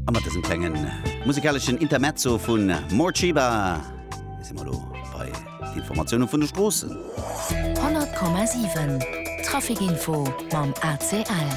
A mat dësem klengen musikaleschen Intermezzo vun Morcheeba si mer elo bei Informatioune vun de Stroossen. 100,7 Trafikinfo mam ACL.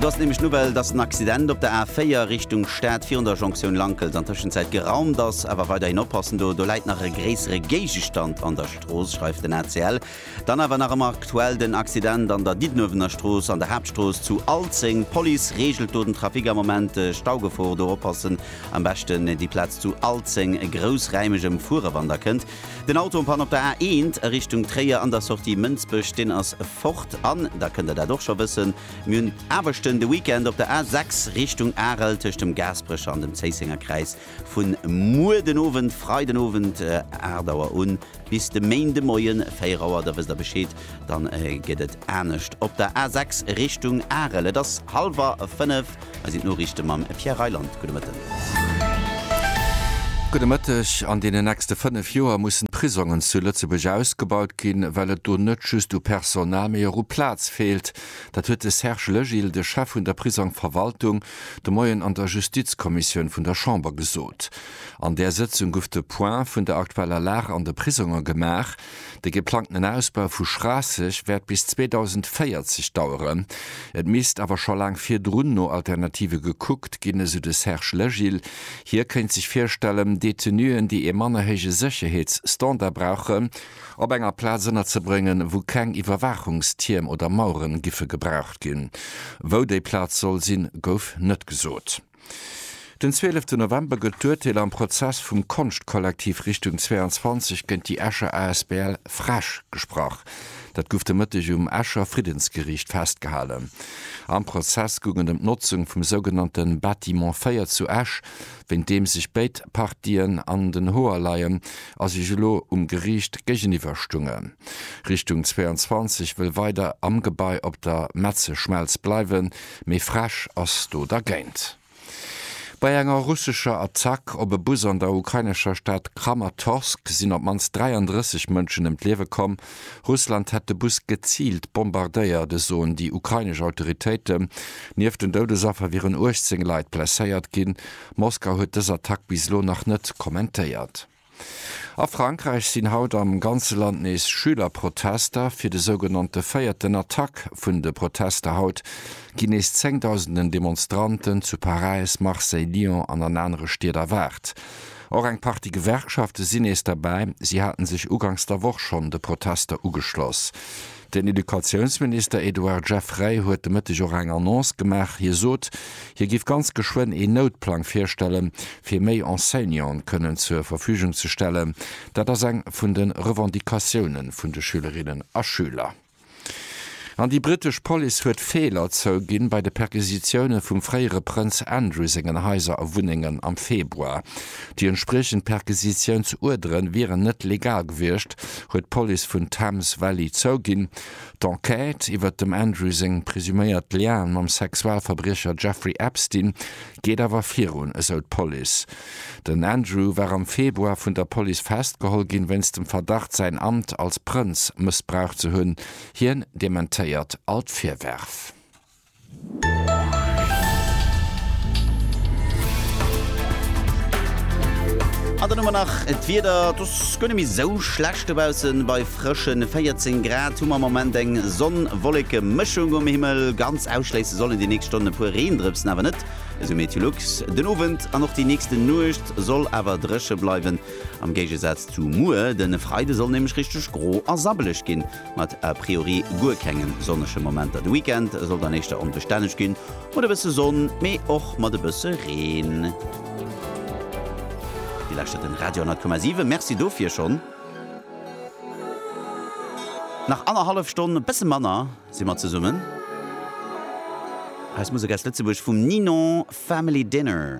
Do ass nämlech d'Nouvelle, dass den Accident op der A4 Richtung Stad virun der Jonktioun Lankels an Tëschenzäit geraumt ass. Awer weiderhin oppassen, do läit nach e gréissere Géigestand an der Strooss, schreift den ACL. Dann awer nach ëmmer aktuell den Accident an der Diddenuewener Strooss an der Haaptstrooss zu Alzeng. D'Police reegelt do den Trafic am Moment. Staugefor, do oppassen, am beschten déi Plaz zu Alzeng groussräimeg ëmfuere wann der kënnt. Den Auto en panne op der A1 a Richtung Tréier an der Sortie Mënsbech, deen ass fort. An da kënnt der dat och scho wëssen, mir hunn Aarbechten de Weekend op der A6 Richtung Arel tëscht dem Gaasperecher an dem Zéissenger Kräiz. Vu muer den Owend, Freiden Owend 8 Auer un, bis de Méinde Moien 4 Auer, da wësst der Bescheed, dann gëtt et anescht op der A6 Richtung Arel. Et ass hallwer 5, hei sinn d'Noriichte mam Pierre Reyland. Gudde Mëtten. Gudde Mëtteg. An deenen nächste 5 Joer mussen d'Prisongen zu Lëtzebuerg ausgebaut ginn, well et do net just u Personal, mee och u Plaz feelt. Dat huet de Serge Legil, de Chef vun der Prisongverwaltung, de Moien an der Justizkommissioun vun der Chamber gesot. An där Sëtzung gouf de Point vun der aktueller Lag an de Prisonger gemaach. De geplangtenen Ausbau vu Schraasseg wäert bis 2040 daueren. Et misst awer scho laang virdrun no Alternative gekuckt ginn, esou de Serge Legil. Hie kéint sech virstellen, Detenuen, déi ee manner héije Sécherheetsstandard brauchen, op enger Plaz ënnerzebréngen, wou keng Iwwerwaachungstierm oder Maueren giffe gebraucht ginn. Wou déi Plaz soll sinn, gouf net gesot. Den 12 November gëtt d'Urteel am Prozess vum Konschtkollektiv Richtung 22 géint déi Escher asbl Fresch gesprach. Dat guff de Mëtteg um Escher Friddensgeriicht festgehalen. Am Prozess goung et em d'Notzung vum sougenannte Bâtiment 4 zu Esch. wéint deem sech béid Partien an den Hoer leien a sech elo um Geriicht géigeniwwer stungen. Richtung 22 wëll weider am Gebai op der Metzeschmelz bleiwen, mee Frech ass do dergéint. Bei enger russescher Attack op e Bus an der ukrainescher Stad Kramatorsk sinn op d'mannst 33 Mënschen ëm d'Liewe komm. Russland hätt de Bus geziilt bombardéiert, esoen déi ukrainesch Autoritéiten. Nieft den Doudesaffer wieren 18 Leit blesséiert ginn. Moskau huet dës Attack bis elo nach net kommentéiert. A Frankräich sinn haut am ganze Land nees Schülerprotester. Fir de sougenannte véierten Attack vun de Protester haut ginn nees zéngdausenden Demonstranten zu Paräis, Marseille, Lyon an an anere Stied erwaart. Och eng Partie Gewerkschafte sinn nees derbäi. Si haten sech ugangs der Woch schonn de Protester ugeschloss. Den Educatiounsminister Edouard Geffray huet de Mëtteg och eng Annonce gemaach. Hie sot, hie géif ganz geschwënn een Noutplang virstellen, fir méi Enseignanten kënnen zur Verfügung ze stellen. Dat ass eng vun de Revendicatioune vun de Schülerinnen a Schüler. An déi britesch Police huet Feeler zouginn bei de Perquisitioune vum fréiere Prënz Andrew sengen Haiser a Wunnengen am Februar. Déi entspriechend Perquisitiounsuerdere wieren net legal gewiescht, huet d'Police vun Thames Valley zouginn. D'Enquête iwwert dem Andrew seng presuméiert Lianen mam Sexualverbriecher Jeffrey Epstein geet awer virun, esou d'Police. Den Andrew war am Februar vun der Police festgeholl ginn, wéinst dem Verdacht säin Amt als Prënz mëssbraucht ze hunn. Hien dementéiert all d'Virwärf. An dann hu mer nach d'Wieder, et ass guer net méi esou schlecht dobaussen bei. frëschen 14 Grad hu mer am Moment. Eng Sonn-Wolleke-Mëschung um Himmel. Ganz ausschléisse sollen déi nächst Stonnen e puer Reendrëpsen awer net, esou Meteolux. Den Owend an och déi nächsten Nuecht soll awer dréche bleiwen, am Géigesaz zu muer. De Freide soll nämlech richteg gro a sabbeleg ginn, mat a priori guer kenge sonnege Momenter. De Weekend soll dann éischter onbestänneg ginn, mat e bësse Sonn, mee och mat e bësse Reen. Dir lauschtert den Radio 100,7, Merci dofir schonn. Nach annerhallef Stonn, e bësse manner, si mer zesummen. Hei ass Musek aus Lëtzebuerg vum Ninon, Family Dinner.